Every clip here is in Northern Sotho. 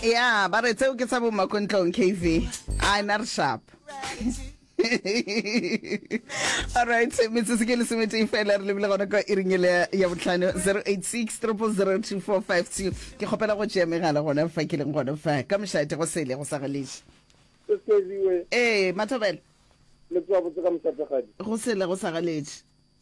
ya ba re tseo ke tsa bo makontlong kv a na re sharp alright metsotso ke lesometee fela re lebile gona kwa iringele ya botlhano 086 002452 ke kgopela go tšea megala gona fa ke leng gona fa ka mošate go sele go sa galeše ee mathobela go sele go sa galeše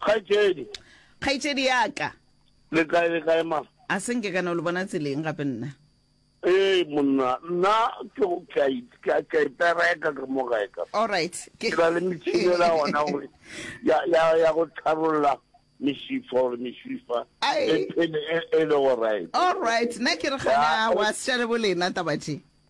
Kgaetšedi. Kgaetšedi ya ka. Le kae le kae ma? A se nke ka no le bona tseleng gape nna. Ee monna, nna ke go ka ka ka ipereka ka mo gae ka. All right. Ke ba le mitshinela ona gore ya ya ya go tharolla misifa gore misifa e phele e le go right. All right. Nna ke re gana wa sele bolena tabatše.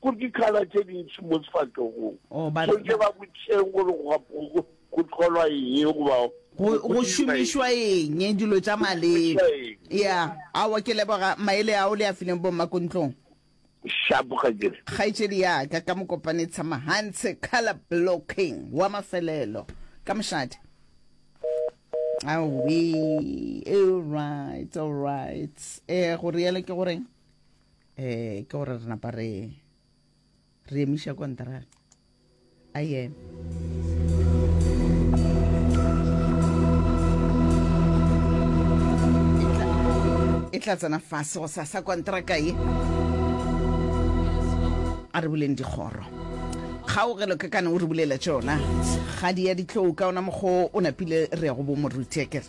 Go dikhala tše dintši mo sefahlogong. Oh, ba- Tshwanetse ba botšeng gore go gap- go- go- go tlholwa eng goba go go dirwa šomišwa eng dilo tša maleba šomišwa ya awa ke leboga maele ao le a fileng bommakontlong Shapo ga ke re. kgaetšedi yaka ka mokopane tshamagantshe color blocking wa mafelelo ka mošate awe alright alright um go realo ke goreng eh ke gore re napa re re emiša kontraga a yena e tla tsena fase go sasa kontraka ye a re boleng dikgoro kgaogelo ka kana o re bulela tsona ga di ya ditlou ka ona mokgwa o napile re ya go bomoruti akere